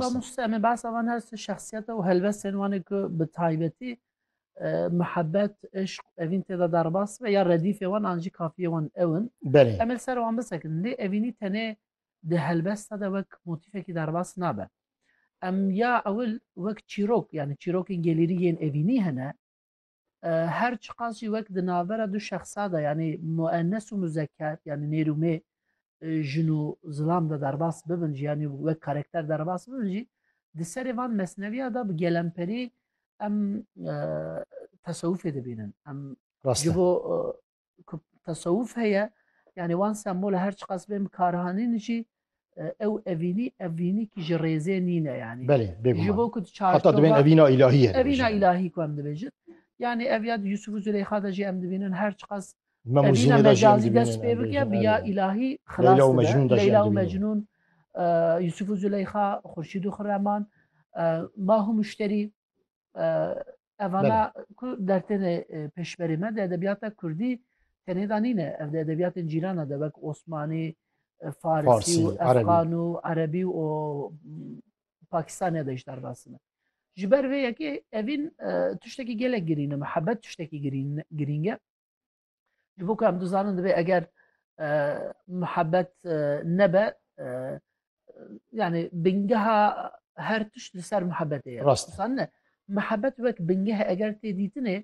Bamûste em ê behsa van her sê şexsiyete û helbestên wan ê ku bi taybetî mihebet, îşq û evîn tê de derbas bibe ya redîfê wan an jî kafiyê wan ew in. Belê. Em ê li ser wan bisekin. Lê evînî tenê di helbesta de wek motîfekî derbas nabe. Em ya ewil wek çîrok yanî çîrokên gelêrî yên evînî hene. Her çiqas jî wek di navbera du şexsa de yanî muennes û muzeker yanî nêr û mê jin û zilam de derbas bibin jî yanî wek karekter derbas bibin jî di serê van mesneviya de bi gelemperî em tesewufê dibînin em ji bo ku tesewuf heye yani wan sembola her çiqas bê min karihanîn jî ew evînî evînî kî ji rêzê nîne yanî Belê ji bo ku heta dibên evîna îlahî ye evîna îlahî ku em dibêjin yani ev ya Yusuf û Züleyxa de jî em dibînin her çiqas evîna mecazî dest pê bike bi ya îlahî xilas Leyla û Mecnûn Yusuf û Züleyxa Xurşîd û Xirreman Mah û Müşterî Evana ku dertêne pêşberê me di edebiyata Kurdî tenê da nîne ev di edebiyatên cîrana de wek Osmanî, Farsî û Efxan û Erebî û Pakistaniya de jî derbasine. Ji ber vê yekê evîn tiştekî gelek girîne mihebet tiştekî girînge. Ji bo ku em dizanin divê eger muhebbet nebe yani bingeha her tişt li ser muhebbetê ye. Rast. Dizanin ne. Muhebbet wek bingeh eger tê dîtinê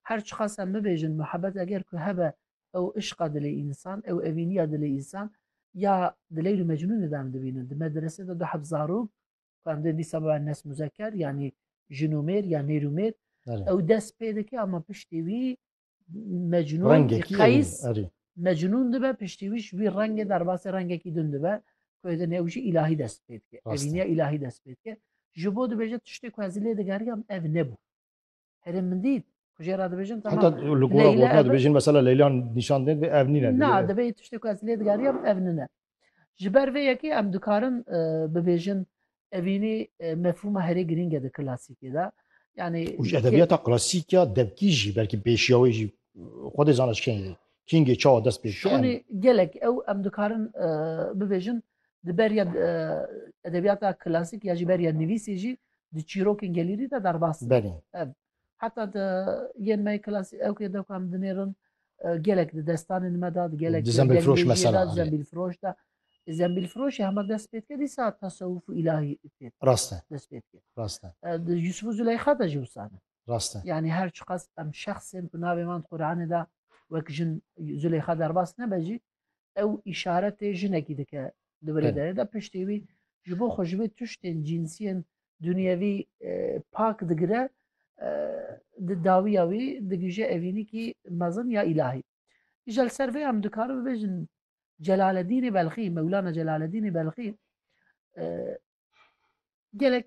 her çiqas em bibêjin muhebbet eger ku hebe ew işqa dilê însan, ew evîniya dilê însan ya di Leyl û Mecnûnê de em dibînin. Di medresê de du heb zarok ku em dê dîsa bibe nes muzeker yanî jin û mêr ya nêr û mêr Belê. ew dest pê dike ama piştî wî mecnûn qeys mecnûn dibe piştî wî ji wî rengê derbasê rengekî din dibe ku êdê ew jî îlahî dest pê dike evîniya îlahî dest pê dike ji bo dibêje tiştê ku ez lê digeriyam ev nebû herê min dît ku jê re dibêjin dibêjin mesela leylan nîşan dê ev nîne na dibê tiştê ku ez lê digeriyam ev nine Ji ber vê yekê em dikarin bibêjin evînî mefhûma herê girîng e di klasîkê de. Yani ji edebiyata klasîka devkî jî belkî pêşiya wê jî xwe dê zana ji kengê kingê çawa dest pê Şonê gelek ew em dikarin bibêjin di beriya edebiyata klasîk ya jî beriya nivîsê jî di çîrokên gelîrî de derbas. Belê. Heta te yên me klasî ew kê dewka min dinêrin gelek di destanên me da di gelek zemîlfiroş da zemîlfiroşê hema dest pê dike dîsa tasewuf û îlahî pê rast e dest pê dike rast e di Yusuf û Züleyxa de jî wisa ne rast e yanî her çiqas em şexsên ku navê wan Qur'anê da wek jin Züleyxa derbas nebe jî ew îşaretê jinekî dike di birê derê de piştê wî ji bo xwe ji vê tiştên cînsiyên dunyevî e, pak digire e, di dawiya wî digije evînîkî mezin ya îlahî. Îja li ser vê em dikarin bibêjin Celaleddînê Belxî, Mewlana Celaleddînê Belxî e, gelek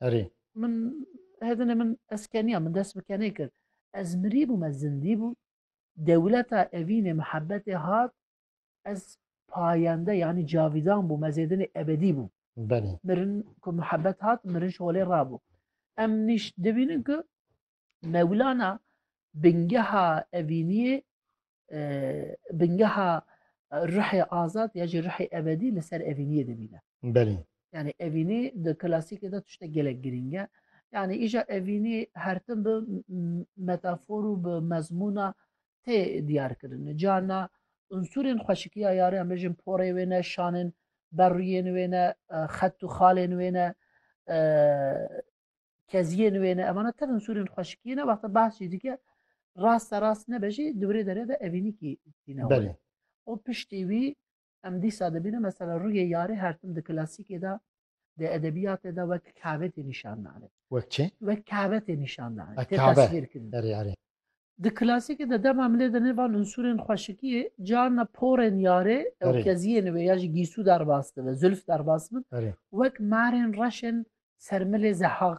Erê. Min hedine min ez keniya min dest bi kenê kir. Ez mirî bûm ez zindî bûm. Dewleta evînê mihebetê hat ez payende yanî cavidan bûm ez êdinê ebedî bûm. Belê. Mirin ku mihebet hat mirin şolê rabû. Em nîş dibînin ku Mewlana bingeha evîniyê e, bingeha ruhê azad ya jî ruhê ebedî li ser evîniyê dimîne. Belê. Yani evînî di klasikê de tiştek gelek girîng e. Yani îja evînî hertim bi metafor û bi mezmûna tê diyar kirin. Carna unsurên xweşikiya yarê em bêjin porê wê ne, şanên berruyên wê ne, xet û xalên wê ne, keziyên wê ne evana tevin sûrên xweşikiyê ne wexta behs jî dike raste rast nebe jî di wirê derê de evînîkî tîne wê û piştî wî em dîsa dibîne mesela rûyê yarê her tim di klasîkê de di edebiyatê de wek kavetê nîşan dane wek çi wek kavetê nîşan dane tê tasvîr kirin Di klasîkê de dema milê de nê van unsûrên xweşikiyê carna porên yarê ew keziyên wê ya jî gîsû derbas dibe, zülf derbas bibin wek marên reşên ser milê zehaq